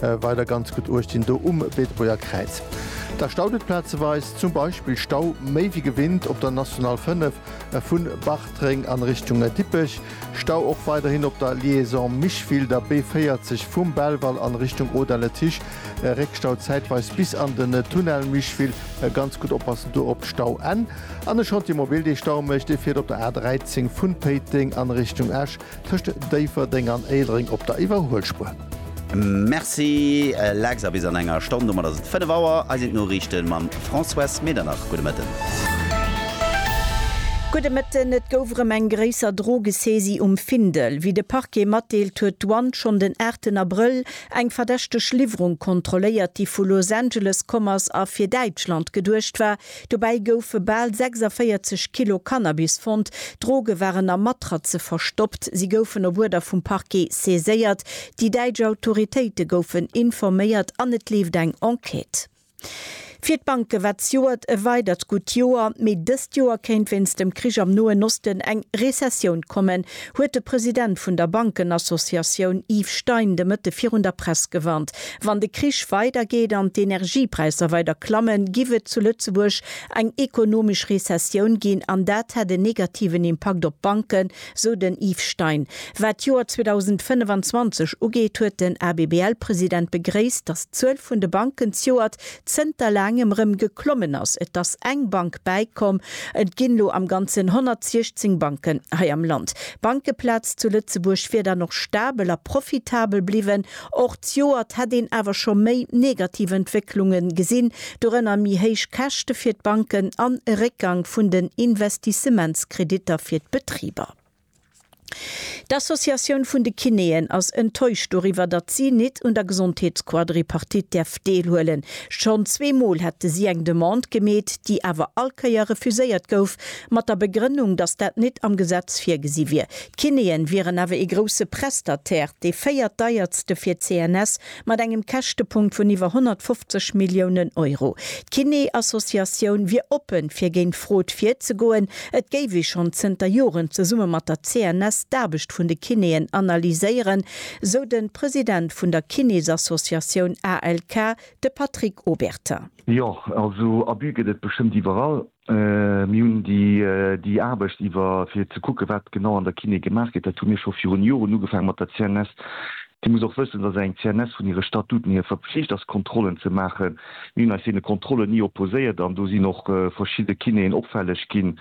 Weider ganz gutt Uecht dinn do um Beetebuerger Kräiz. Da staut et plazeweis, zum Beispill Stau méi wéi gewinnt op der National 5 vu Bartreng an Richtung Dippech. Stau och weiderhin op der Liaison Micheville, der B40 vum Belval an Richtung Audun-le-Tiche. Réckstau zäitweis bis an den Tunnel Micheville. Ganz gutt oppassen do op d'Stauenn. An e Chantier mobil dee Stau mécht, dee fiert op der A13 vun Péiteng an Richtung Esch. Tëscht Déifferdeng an Éilereng op der Iwwerhuelspuer. Merci Lex a bis an enger Stonn, domat ass et 5 Auer. Hei sinn d'Noriichten mam Françoise Medernach. Gudde Mëtten. Gudde Mëtten. Et gouf erëm eng gréisser Drogesaisie um Findel. Wéi de Parquet matdeelt, huet d'Douane schonn den 8 Abrëll eng verdächteg Liwwerung kontrolléiert, déi vu Los Angeles komm ass a fir Däitschland geduecht war, Dobäi goufe bal 46 Kilo Cannabis fonnt. D'Droge waren a Matratze verstoppt. Si goufen op Uerder vum Parquet saiséiert. Déi däitsch Autoritéite goufen informéiert an et leeft eng Enquête. Fir d'Banke war d'Joert e weidert gutt Joer, mee dëst Joer kéint wéinst dem Krich am Noen Osten eng Rezessioun kommen. huet de President vun der Bankenassociatioun Yves Stein de Mëtte virun der Press gewarnt. Wann de Krich weider geet an d'Energiepräisser weider klammen, giff et zu Lëtzebuerg eng ekonomesch Rezessioun ginn an dat hätt en negativen Impakt op d'Banken, sou den Yves Stein. Wat d'Joer 2025 ugeet, huet den ABBL-President begréisst, datt d'Zuel vun de Banken zjoert zënter laangem rëm geklommen ass. Et ass eng Bank bäikomm. Et ginn elo am Ganzen 116 Banken hei am Land. D'Bankeplaz zu Lëtzebuerg wier dann och stabel a profitabel bliwwen. Och d'Joert hätt een awer scho méi negativ Entwécklunge gesinn, dorënner méi héich Käschte fir d'Banken an e Réckgang vun den Investissementskreditter fir d'Betriber. D'Associatioun vun de Kinéen ass enttäuscht doriwwer, datt si nit un der Gesondheetsquadripartite däerf deelhuelen. Schonn zwee Mol hätte si eng Demande gemeet, déi awer all Kéier refuséiert gouf, mat der Begrënnung, datt dat nit am Gesetz virgesi wier. D'Kinéen wieren awer ee grousse Prestataire, dee véiertdeiertste fir d'CNS, Mat engem Käschtepunkt vun iwwer 150 Milliounen Euro. D'Kiné-Associatioun wier oppen, fir géint d'Frod virzegoen. Et géif ee schonn zënter Joren zesumme mat der CNS d'Aarbecht vun de Kinéen analyséieren, sou de President vun der Kinésassociatioun ALK, de Patrick Obertin. Jo, also Abus gëtt et bestëmmt iwwerall. Mir hunn déi Aarbecht iwwer, fir ze kucken, wat genau an der Kiné gemaach gëtt, dat hu mir scho virun Joren ugefaangen mat der CNS. Dir musst och wëssen, dass eng CNS vun hire Statuten hier verpflicht ass, Kontrollen ze maachen. Mir hunn eis deene Kontrollen ni opposéiert an do sinn och verschidde Kinéen opfälleg ginn,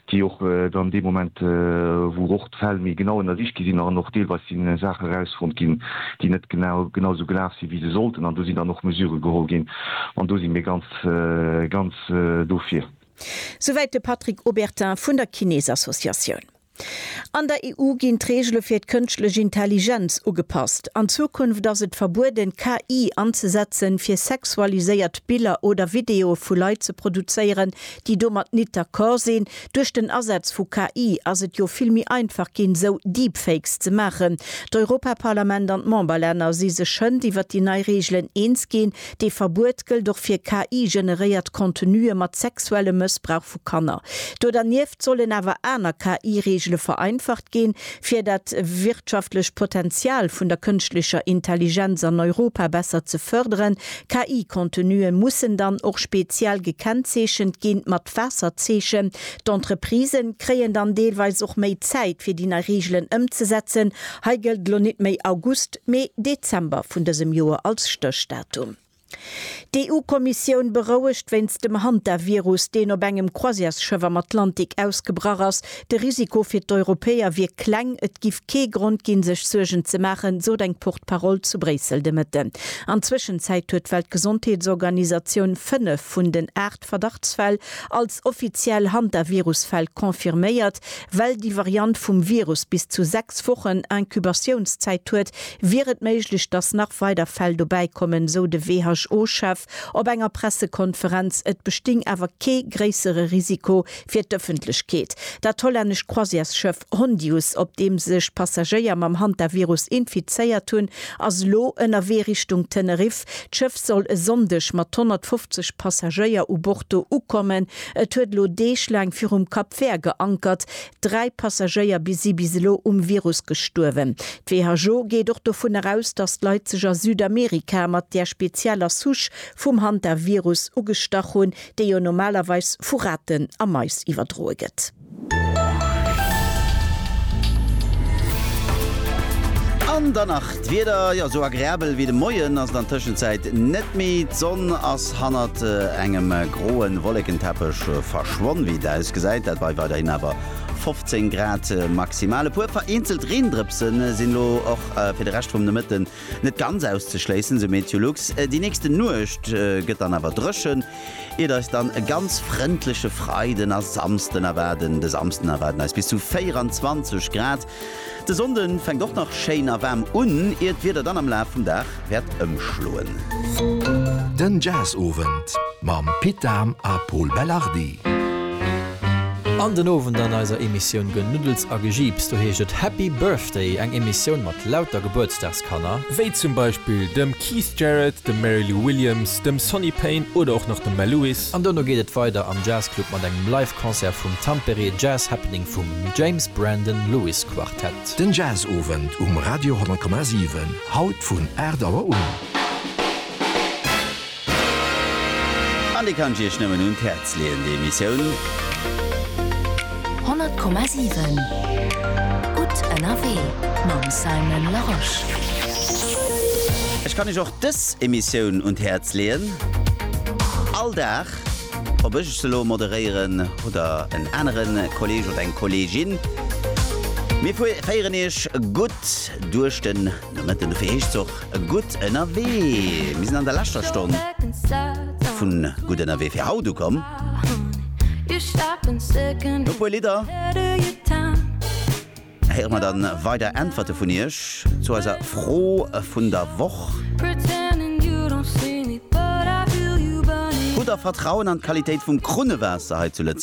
déi och dann dee Moment, wou och. d'Fäll méi genau ënnersicht gi sinn an och deelweis si Saache erausfonnt ginn, déi net genau genausou gelaf sinn, wéi se sollten. An do sinn dann och Mesurë geholl ginn an do si mir ganz, ganz dofir. Souwäit de Patrick Obertin vun der Kinésassociatioun. An der EU ginn d'Reegele fir d'Kënschtlech Intelligenz ugepasst. An Zukunft ass et verbueden, KI anzesetzen, fir sexualiséiert Biller oder Videoe vu Leit ze produzéieren, déi domat nit d'accord sinn. Duerch den Asaz vu KI ass et jo vill méi einfach ginn, esou Deepfakes ze maachen. D'Europaparlament an d'Memberlänner si sech schënd iwwert déi nei Reegelen eens ginn. Dee Verbuet gëllt och fir KI-generéiert Contenue mat sexuellem Mëssbrauch vu Kanner. Do dernieft sollen awer aner KI-Reegele vereinfacht ginn, fir dat wirtschaftlecht Potenzial vun der kënschtlecher Intelligenz an Europa besser ze fërderen, KI-Contenue mussen dann och speziell gekennzeechent ginn, mat Waasserzeechen. D'Entreprisë kréien dann deelweis och méi Zäit, fir déi nei Reegelen ëmzesetzen. Hei gëllt elo net méi August, mee Dezember vun dësem Joer als Stéchdatum. D'EU-Kommissioun berouegt wéinst dem Hantavirus, deen op engem Croisièresschëff am Atlantik ausgebrach ass, De Risiko fir d'Europäer wier kleng, et giff kee Grond ginn, sech Suergen ze maachen, sot eng Porte-parole zu Bréissel de Mëtten. An Zwëschenzäit huet d'Weltgesondheetsorganisatioun fënnef vun den aacht Verdachtsfäll als offiziell Hantavirus-Fäll confirméiert. Well déi Variant vum Virus bis zu sechs Wochen Incubatiounszäit huet, wier et méiglech, datt nach weider Fäll dobäi kommen, sou de WHO-Chef op enger Pressekonferenz. Et besting awer kee gréissere Risiko Fir d'Ëffentlechkeet, Dat hollännescht Croisièresschëff Hondius, op deem sech Passagéier mam Hantavirus infizéiert hunn, ass elo ënnerwee Richtung Teneriff. D'Schëff soll e Sonndeg mat 150 Passagéier u Bord do ukommen. Et huet elo Deeg laang virum Cap Vert geankert. Dräi Passagéier bi si bis elo um Virus gestuerwen. D'WHO geet och dovun eraus, datt d'Leit sech a Südamerika mat där spezieller Souche vum Hantavirus ugestach hunn, déi jo normalerweis vu Raten a Mais iwwerdroe gëtt. An dann nach d'Wieder, jo esou agreabel wéi de Moien ass et an Tëschenzäit net méi. D'Sonn ass hannert engem groe Wollekenteppech verschwonn. Wéi et ausgesäit, dat bei weiderhin awer 15 Grad maximal. E puer vereenzelt Reendrëpse sinn elo och fir de Rescht vum Nomëtten Net ganz auszeschléissen, esou Meteolux. Déi nächste Nuecht gëtt dann awer dréchen, iert eis dann e ganz frëndleche Freiden a Samsden erwaarden. De Samsden erwaarden eis bis zu 24 Grad. De Sonnde fänkt och nach schéin a waarm un, iert d'Wieder dann am Laf vum Dag wäert ëmschloen. Den Jazz-Owend mam Pit Dahm a Pol Belardi. An den Owend an eiser Emissioun Genuddels a Gejiips, do heescht et Happy Birthday, eng Emissioun mat lauter Gebuertsdagskanner, wéi zum Beispill dem Keith Jarrett, dem Mary Lou Williams, dem Sonny Payne oder och nach dem Mel Lewis. An dono geet et weider am Jazz Club mat engem Live Concert vum Tampere Jazz Happening vum James Brandon Lewis Quartett. Den Jazzowend um Radio 100,7, haut vun 8 Auer un. An déi kann ech Iech nëmmen un d'Häerz leeën, déi Emissioun. 100,7 Gutt ënnerwee mam Simon Larosche. Ech kann Iech och dës Emissioun un d'Häerz leeën. All Dag, ob ech se elo moderéieren oder en anere Kolleeg oder eng Kolleegin, mir féieren Iech gutt duerch den. Nomëtten ufir heescht se och gutt ënnerwee. Mir sinn an der leschter Stonn vu Gutt ënnerwee fir haut ukomm. No e puer Lidder héiere mer dann weider Äntwerte vun iech zu eiser Fro vun der Woch. Hutt der Vertrauen an d'Qualitéit vum Krunnewaasser hei zu Lëtzebuerg?